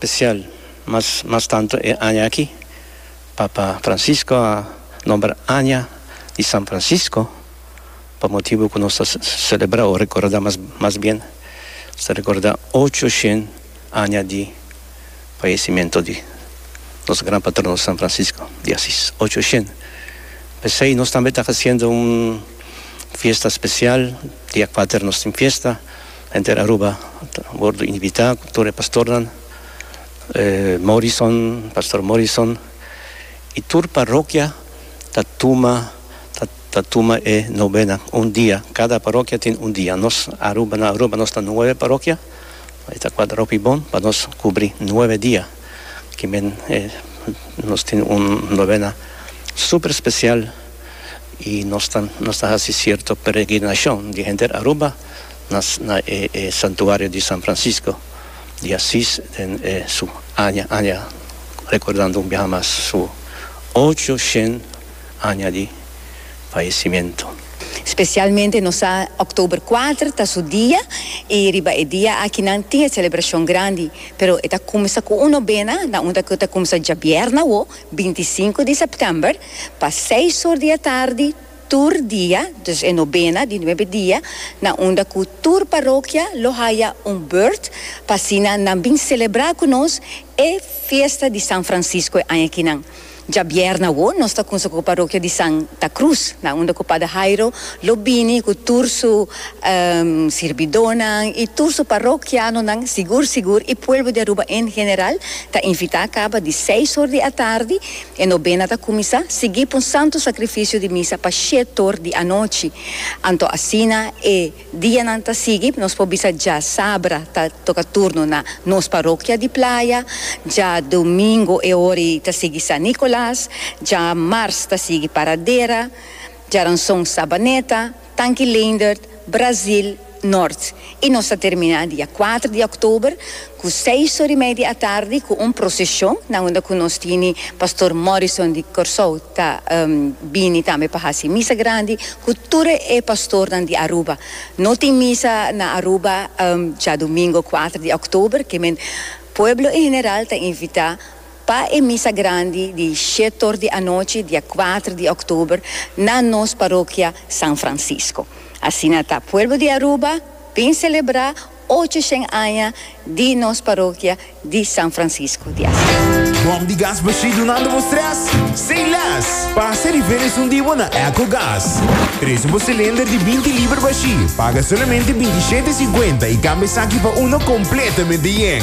Spesial, mas mas tantu e aña aki, Papa Francisco a nombra Aña di San Francisco pa motibu ku nos ta selebrá o rekordá, mas mas bien ta rekordá ocho shen aña di fayesimentu di nos gran patrono San Francisco di Asis, ocho shen. P'esei nos tambe ta hasiendo un fiesta spesial, dia kuater nos tin fiesta. Henter Aruba a wordo invitá ku tur e pastornan, Morrison, Pastor Morrison, i tur parokia ta tuma ta tuma e nobena un dia, kada parokia tin un dia. Nos Aruba na Aruba nos ta nuebe parokia, e ta kual hopi bon pa nos kubri nuebe dia ki men nos tin un nobena super spesial i nos ta nos ta hasi sierto peregrinashon di henter Aruba. na e Santuario di San Francisco di Asis den e su aña aña recordando un biaha mas su ocho shen aña di fallecimiento. Specialmente nos sa October kuater ta su dia y riba e dia aki nan tin e celebracion grandi pero e ta cuminsa cu un nobena na un ta cu ta cuminsa djabièrna awo binti i sinku di September pa seis or di atardi Tur dia, dus e nobena di nuebe dia, na unda ku tur parokia lo haya un burt pa asina nan bin selebrá ku nos e fiesta di San Francisco e aña kinan. Djabièrnè awo nos ta kunsa ku parokia di Santa Cruz, na unda ku Pader Hairo lo bini ku tur su sirbidónan i tur su parokianonan sigur sigur i puelbo di Aruba en general ta invitá kaba di seis or di atardi, E nobena ta kuminsá sigui p'un santu sakrifisio di misa pa shiet or di anochi. Anto asina e dianan ta sigui, nos por bisa dja sabra ta toka turno na nos parokia di Playa, dja domingo e hori ta sigui San Nicolas, dja mars ta sigui Paradera, djaranson Sabaneta, Tanki Leendert, Brazil, Noord. Y nos ta termina dia cuater di October cu seis ora y media atardi cu un procesion na unda cu nos tini Pastor Morrison di Corsou ta bini tambe pa haci misa grandi cu tur e pastornan di Aruba. No tin misa na Aruba djadomingo cuater di October, kemen pueblo en general ta invita. Pa e misa grandi di shetor di anochi dia kuater di oktober na nos parokia San Francisco. Asina ta pueblo di Aruba bin selebrá ocho shen aña di nos parokia di San Francisco di Asís. Bòm di gas bashí dunando bo strès? Say less! Pasa riba e esun di bo na Echo Gas. Presu bo silinder di binti liber bashí, paga solamente binti shete e sinkuenta i kambia esaki pa uno kompletamente yen.